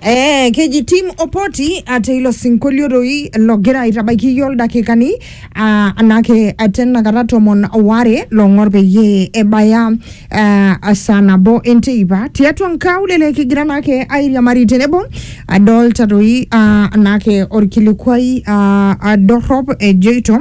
Eh, keji Tim Opoti ate ilo sinkolio doi logira aitabaiki iyiook ildakikani ah, anake ate nakata tomon ware long'or peyie ebaya ah, saa nabo enteipa tiatua nkaulele kigira naake airiamari tenebo adolta doi ah, anake orkilikuai ah, ah, dorrop ejoito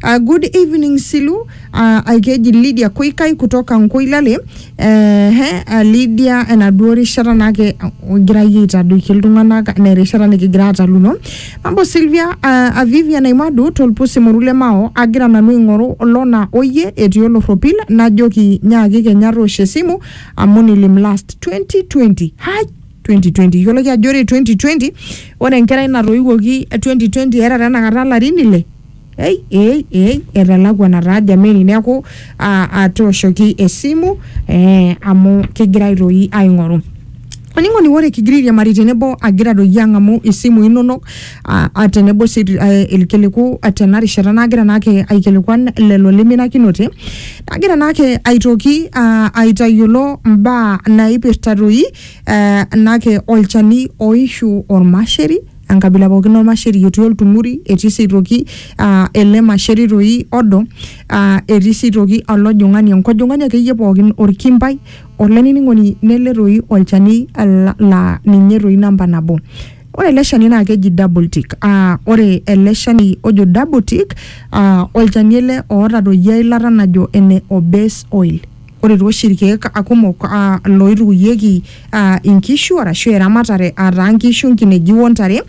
ah, good evening Silu ah, ah, keji Lydia Koikai kutoka Nkoilale Ehe, a Lydia enaduo rishata naake ogira iyie aitadoiki iltung'anak naa erishata nikigira aataluno. Mambo Sylvia, uh, a Vivian Aimadu tolpusi moru le Mao agira nanu aing'oru lona oyie etii olorropil najoki nyaaki kenya toosho esimu amu nilim last 2020. Hai! 2020 iyioloki ajo ore 2020 ore enkerai natoiwuoki 2020 era tenakata ilarin ile Ei, ei, ei, etalakwa nataa jameni neeku aa, atooshoki esimu eh, amu kigirai toi aing'oru oling'oni ore kigira airiamari tenebo agira doi ang'amu isimui inonok a- a tenebo sii eh, ilkiliku eh, tena rishata nagira naake aikilikuan lelo liminakinote nagira naake aitoki ah, aitayiolo mbaa naipirta toi eh, naake olchani oishu ormasheri enkabila pookin ormasheri otii oltung'uri etii sii aitoki uh, ele masheri toi odo uh, etii sii aitoki olojung'ani enkojong'ani akeyie pookin orkimbai olainining'oni nele toi olchani la, la ninye toi namba nabo ore ele shani naa keji double tick uh, ore ele shani ojo double tick uh, olchani ele oota toi eilata najo ene obase oil Ore too oshi ilkeek kumok looitukuyieki inkishu arashu eramatare aa taa inkishu, inkineji o ntare,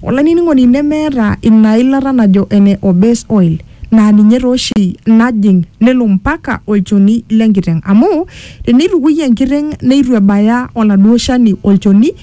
olainining'oni nemeeta ina ilata najo ene base oil naa ninye taa oshi najing' nelo mpaka olchoni le nkiteng'. Amu teneitukui enkiteng' neitu ebaya oladuo shani olchoni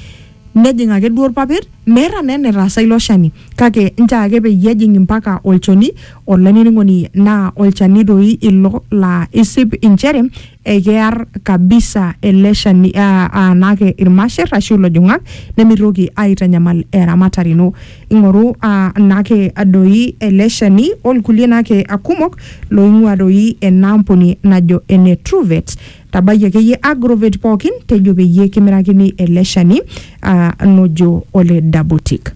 Nejing ake duo ilpapit, meeta naa enetaasa ilo shani. Kake nchoo ake peyie ejing mpaka olchoni, olainining'oni naa olchani doi ilo laa isip inchere ekear kabisa ele shani aa naake ilmasher ashu ilojong'ak nemeitoki aitanyamal eramatare ino. Ing'oru naake doi ele shani o lkulie naake kumok loing'ua doi ena ampuni najo ene Truvet. tabai akeyie agrovet pookin tejo peyie kimirakini ele shani ah, nojo ole dabotik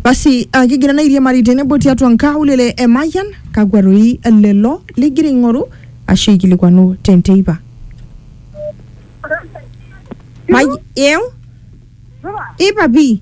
basi ah, kigira naa airiamari tenebo tiatua nkaulele e mayian kakwa toi lelo ligira aing'oru ashu aikilikuanu tenteipa May- eu ipapi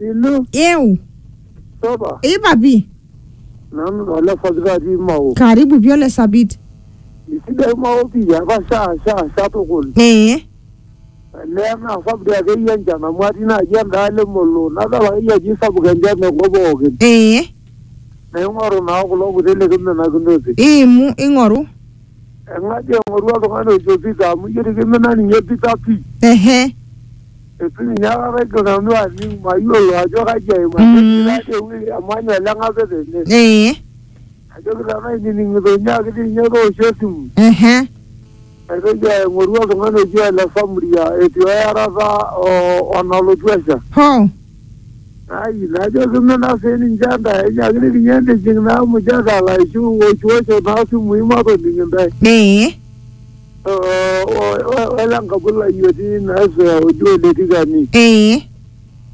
Ilo eu saba ipa pi nanu nala sabita atii mao. karibu pi ole sapit Isidai mao pii apa shaa shaa shaa tukul. ee Olee naa sapuk dii akeyie enchan amu atii naaji endaalo emolo nadol akeyie ajo isapuk enchan tenkop pookin. ee Naing'oru naa kulo kuti likiminakinote. iimu ing'oru Eng'aji eng'oru oltung'ani ojo Peter amu ijo dii kimina ninye Peter pii. Ehe. Eitu ninye aikata aigil nanu aning' mayiolo ajo kaji aim ajo Mm. etii taadii ewueji emanya ele ng'ape tene. Ee. Najoki tenaa ainining'ito nyaaki dii ninye toosho esimu. Ehe. Naitoki aing'oru oltung'ani oji Ole Samria etii oyarata o o nalotu esha. Hoo. Ayi najoki mme naa sii ninche intae enyaakinikinye entijing naa emujata laishu woishuwosho naa simui matoning intae. Ee. O, o, o, ole nkabulai otii ina esea oji Ole Tikani. Ee.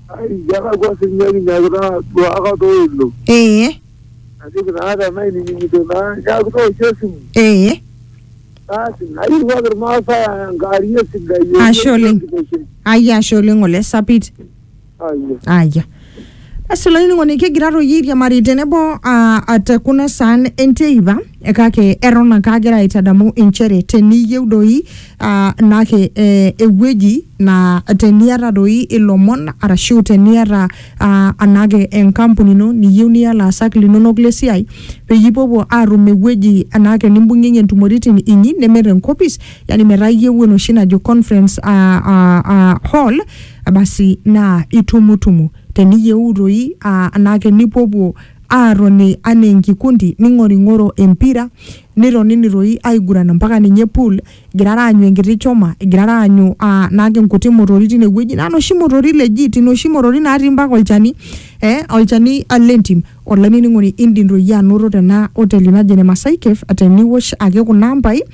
Ayi kelakua sii ninye kinyakita aaduaaka too ilo. Ee. Najoki naa tenainining'ito naa nyaaki tooshi esimu. Ee. Asi nairriwaki irmaasai enkarie sidai. Ashe oleng. Ayia ashe oleng ole sapit. Ayia. Aya. Basi olainining'oni kigira toi airiamari tenebo ah, ah, te kuna saan enteipa eh, kake eton ake agira aitadamu inchere teniyieu doi ah, naake eh, ewueji naa teniata doi ilomon arashu teniata uh, anaake enkampuni ino niyieu niya laasak linonok le siai peyie ipopuo aatum ewueji anaake nimbung'ieng'ie ntumoritin inyi neme tenkopis yani metaa iyieu enoshi najo conference uh, uh, uh, hall basi naa itumutumu teniyieu toi uh, anaake nipopuo aatoni anaa enkikundi ning'oring'oro empira nitonini toi aiguran mpaka ninye pool igirara aanyu enkiti choma igirara aanyu aa naake inkuti motori tine wueji naa noshi motori legit inoshi motori naatii mpaka olchani eh, olchani ah, lentim olainining'oni indim doi iyie anoto tena oteli naji ene Masai Cave teniwosh ake kuna ambai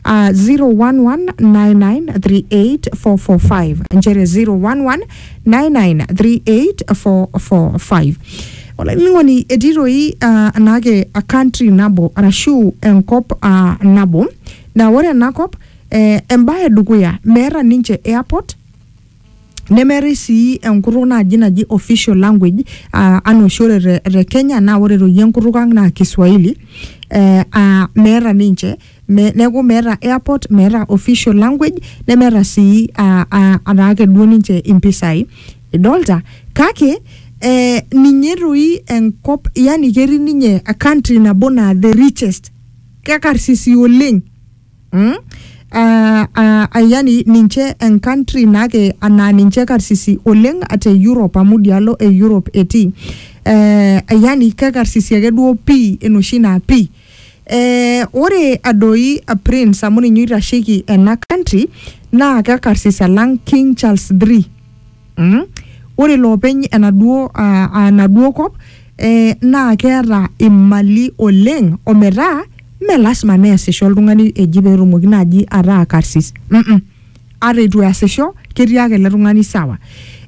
ah, 011993845 nchere 011993845 olainining'oni etii doi ah, naake a country nabo arashu enkop ah, nabo Naa ore ena kop eh, embae edukuya meeta ninche airport nemeetae sii enkutuk naaji naji official language aa anaa oshi ore te, te Kenya naa ore toi enkutuk ang naa kiswahili eh, aa meeta ninche me, neeku meeta airport meeta official language nemeeta sii aa, aa ataa ake duo ninche impisai idolta kake eh, ninye toi enkop yani ketii ninye country nabo naa the richest kekarsisi oleng mm? uh, uh, yani ninche encountry nake anaa ninche karsisi oleng te Europe amu dialo e Europe etii eh, yani kekarsisi ake duo pii enoshi naa pii eh, ore adoi uh, prince amu ninye oitasheki ena country naa kekarsis alang King Charles III Mm? Ore loopeny enaduo aa aa enaduo kop eh, naa keeta imali oleng ometaa mme lasima neesisho oltung'ani eji peetumoki naaji ataa karsis mm, mm. Ata eitu easisho ketii ake ele tung'ani sawa.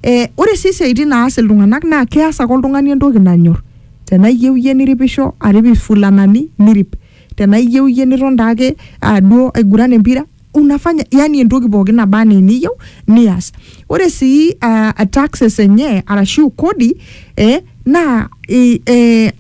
Eh, ore sii siaitin naas iltung'anak naa keas ake oltung'ani entoki nanyorr. Tenaa iyieu iyie niripisho arip ifulanani nirip, tenaa iyieu iyie niton taake aa duo aiguran empira. unafanya yani entoki pookin naba anaa eniyieu nias ore sii uh, taxes enye arashu kodi eh, naa i- eh,